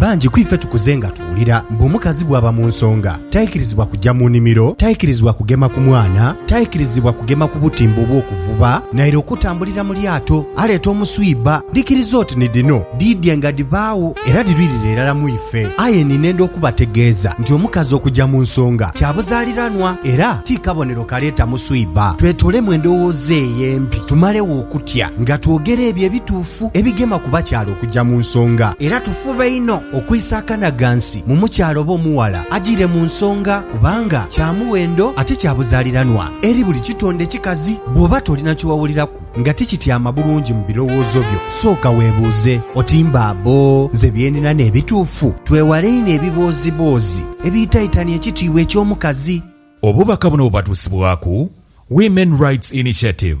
Bangi ku ife tukuze nga tuwulira mbu omukazi bw'aba mu nsonga taikirizibwa kuja mu nimiro, taikirizibwa kugema ku mwana, taikirizibwa kugema ku butimba obw'okuvuba, naire okutambulira mu lyato aleeta omuswiba. Ndhikiriza oti ni dhino dhiidhi nga dhibaagho era dhirwirire irala mu ife. Aye ninenda okubategeeza nti omukazi okuja mu nsonga kya buzaaliranwa era ti kabonero kaleeta muswiba. Twetolemu endowooza eyo embi tumalegho okutya nga twogera ebyo ebituufu. bituufu ebigema ku bakyala okuja mu nsonga era tufube inho okwisa akana ghansi mu mukyala oba omughala ajire mu nsonga kubanga kya muwendo ate kya buzaliranwa eri buli kitonde kikazi. Bwoba tolina kyewawuliraku nga tikityama bulungi mu birowoozo byo, sooka webuuze oti mba abo nze byenina n'ebituufu? Twewale inho ebibooziboozi ebiitaitania ekitiibwa eky'omukazi. Obubaka buno bubatuusibwaku Women Rights Initiative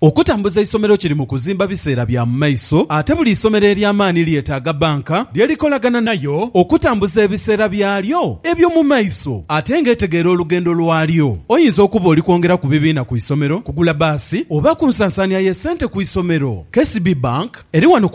Okutambuza eisomero kiri mu kuzimba biseera bya mu maiso ate buli isomero ery'amaani lyetaaga bbanka lye likolagana nayo okutambuza ebiseera byalyo eby'omu maiso ate ng'etegeera olugendo lwalyo. Oyinza okuba oli kwongera ku bibiina ku isomero, kugula bbaasi oba ku nsansaania y'essente ku isomero. KCB Bank eri wano ku.